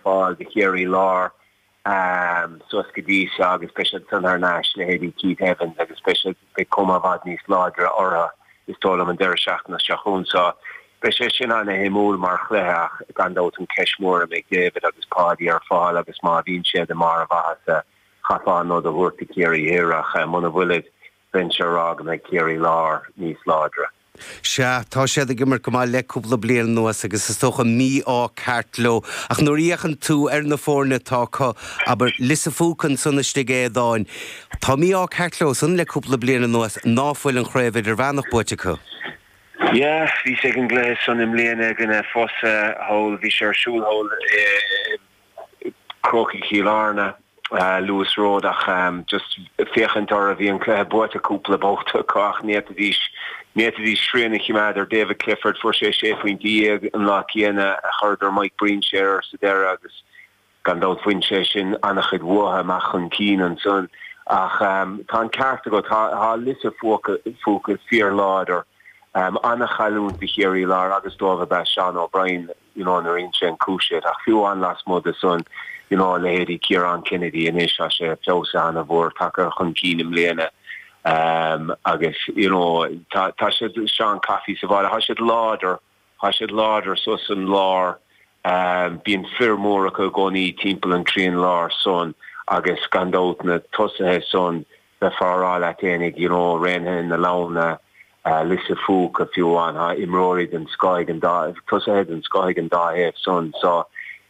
fáil do Chiarraí Láir suas go dtí seo agus beidh siad san thar n-ais, leithéidí Keith Evans agus beidh siad beidh cuma i bhfad níos láidre orthu is dóigh liom an deireadh seachtaine seo chugainn so beidh sé sin an-shuimiúil mar chluiche ach gan dabht an ceist mhór a mbeidh David agus Paudie ar fáil agus má bhíonn siad i mbarr a mhaitheasa chaithfeá an nod a thabhairt do Chiarraí Thoir ach muna bhfuilid bheinnse a rá go mbeidh Ciarraí Láir níos láidre. Sea, tá siad ag imirt go maith le cúpla bliain anuas agus is dócha mí-ádh ceart leo, ach nuair a fhéachann tú ar na foirne atá acu, abair Lios a' Phúca ansan istigh a Aodáin, tá mí-ádh ceart leosan le cúpla bliain anuas ná fuil an Chraobh Idirmheánach buaite acu. Yeah, bhíos ag an gcluiche san i mbliana i gcoinne Fossa, thall, bhí sé ar siúl thall i, Chrócaigh Chill Airne, Lewis Road, ach just féachaint orthu bhí an cluiche buaite cúpla babhta acu ach n'fhéadfaidís, n'fhéadfaidís srian a chimeád ar David Clifford, fuair sé sé phointe dhéag an lá céanna a chuireadar Mike Breen siar air sa deireadh agus gan dabht bhain sé sin an-chuid uathu amach chun cinn ansan. Ach tá an ceart agat, tá Lios a' Phúca fíor-láidir, an-chailliúint do Chiarraí Láir agus dóibh ab ea Seán O'Brien. you know nuair a insíonn cúis iad ach fiú amháin lasmuigh de san you know leithéidí Ciarán Kennedy anois tá sé feabhsaithe an-mhór tagtha chun cinn i mbliana um agus you know tá tá siad Seán Coffey sa bhaile tá siad láidir tá siad láidir so san lár um bíonn fir mór acu i gcónaí timpeall an trian lár san agus gan dabht na tosaithe san Bheifeá a rá leat fhéinig, you know, Raonaithe na Leamhna, Lios a' Phúca, fiú amháin, tá imreoirí den scoth ag an dá, tosaithe den scoth ag an dá thaobh san. So,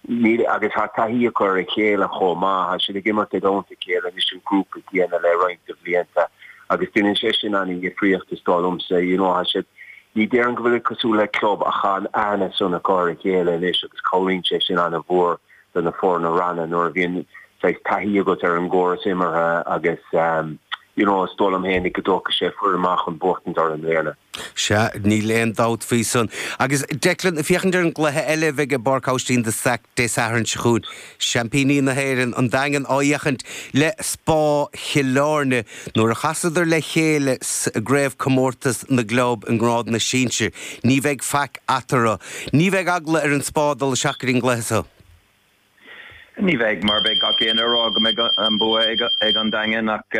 níl, agus tá taithí acu ar a chéile chomh maith. Tá siad ag imirt i dteannta a chéile anois, an grúpa céanna le roinnt de bhlianta, agus déanann sé sin an-dhifríocht, is dóigh liomsa. You know, tá siad, ní déarfainn go bhfuil siad cosúil le club ach tá an aithne san acu ar a chéile anois agus cabhraíonn sé sin an-mhór do na foirne ranna nuair a bhíonn saghas taithí agat ar an gcóras imeartha agus you know is dóigh liom fhéin go dtógfaidh sé foireann mhaith chun buachtaint orthu i mbliana. Sea, níl aon dabht faoi san. Agus Declan, ag féachaint ar an gcluiche eile a bheidh i bPáirc Oistín de Staic Dé Sathairn seo chugainn, seaimpíní na hÉireann, an Daingean, á fhéachaint le Spá Chill Airne, Nuair a chasadar le chéile sa gCraobhchomórtas na gClub i nGrád na Sinsear, ní bheidh faic eatarthu. Ní bheidh eagla ar an Spá dul isteach go dtí an gcluiche seo. Ní bheidh, mar beidh gach éinne ag rá go mbeidh an bua ag an Daingean ach,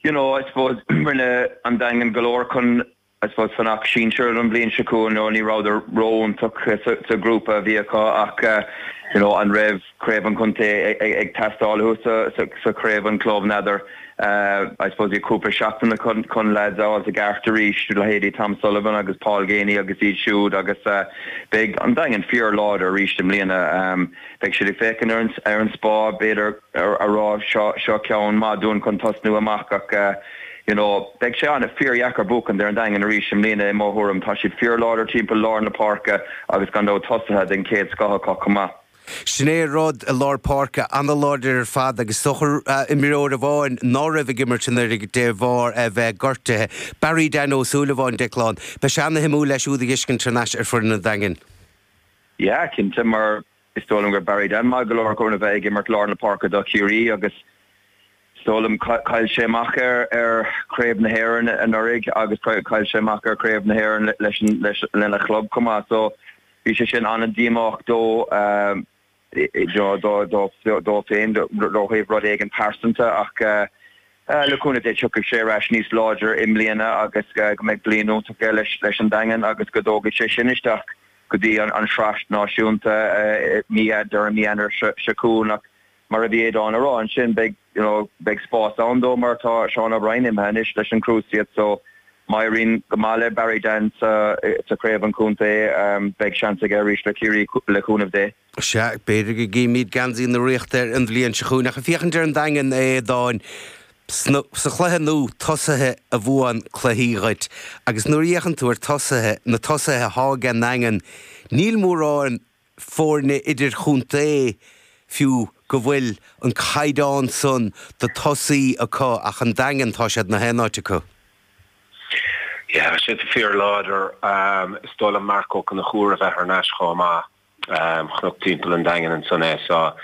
you know, I suppose rinne an Daingean go leor chun I suppose fanacht sinsear don bhliain seo chugainn, you know, ní rabhadar ró-iontach sa ghrúpa a bhí acu ach, you know, an raibh craobh an chontae ag teastáil uathu sa chraobh an chlub, n'fheadar. I suppose bhí cúpla seachtain acu chun leaids a fháilt i gceart arís, leithéidí Tom Sullivan agus Paul Geaney agus iad siúd agus beidh an Daingean fíor-láidir arís i mbliana. Beidh siad ag féachaint ar an Spá, b'fhéidir, a rá seo ceann maith dúinn chun tosnú amach ach, you know beidh sé ana fíordheacair buachaint ar an Daingean arís i mbliana i mo thuairim, tá siad fíorláidir timpeall lár na páirce agus gan dabht tosaithe den chéad scoth acu chomh maith. Sin é an rud, i lár páirce, ana-láidir ar fad agus is dócha imreoir amháin ná raibh ag imirt anuiridh de bharr é bheith gortuithe, Barry Dan Ó Súilleabháin, Declan. Beidh sé ana-shuimiúil é siúd a fheiscint thar n-ais ar foireann an Daingin. Yeah cinnte mar Is dóigh liom go raibh Barry Dan maith go leor chun a bheith ag imirt lár na páirce do Chiarraí agus is dóigh liom chaill sé amach ar Chraobh na hÉireann anuraidh agus chaill sé amach ar Chraobh na hÉireann leis lena chlub chomh maith so bhí sé sin an-díomách dó féin ó thaobh rud éigin pearsanta ach le cúnamh Dé tiocfaidh sé ar ais níos láidre i mbliana agus go mbeidh bliain iontach aige leis an Daingean agus go dtógfaidh sé sin isteach go dtí an Sraith Náisiúnta mí Deireadh Fhómhair, mí Eanáir seo chugainn ach mar a bhí Aodán a rá ansin beidh you know beidh spás ann dó mar tá Seán Ó Briain imithe anois leis an Cruciate so má éiríonn go maith le Barry Dan sa sa Chraobh an Chontae beidh seans aige arís le Ciarraí le cúnamh Dé. Sea, b'fhéidir go gcífimíd geansaí na Ríochta air an bhliain seo chugainn, ach ag féachaint ar an Daingean, a Aodáin, sna, sa chluiche nua, tosaithe a bhuann cluichí dhuit, agus nuair a fhéachann tú ar tosaithe, na tosaithe atá ag an nDaingean, níl mórán fóirne idir-chontae, fiú, go bhfuil an caighdeán san do tosaí acu ach an Daingean, tá siad i ngach aon áit acu. Yeah, tá siad fíor-láidir. Is dóigh liom Marc Ó Conchúir a bheith thar n-ais chomh maith. chonac timpeall an Daingin ansan é so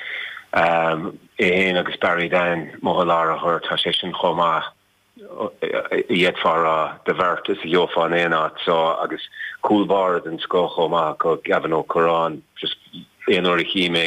é fhéin agus Barry Dan amuigh i lár an ghoirt tá sé sin chomh maith a d'fhéadfá a rá do bheirt is a gheofá in aon áit so agus cúl báire den scoth chomh maith acu Gavin Ó Curráin just aon uair a chím é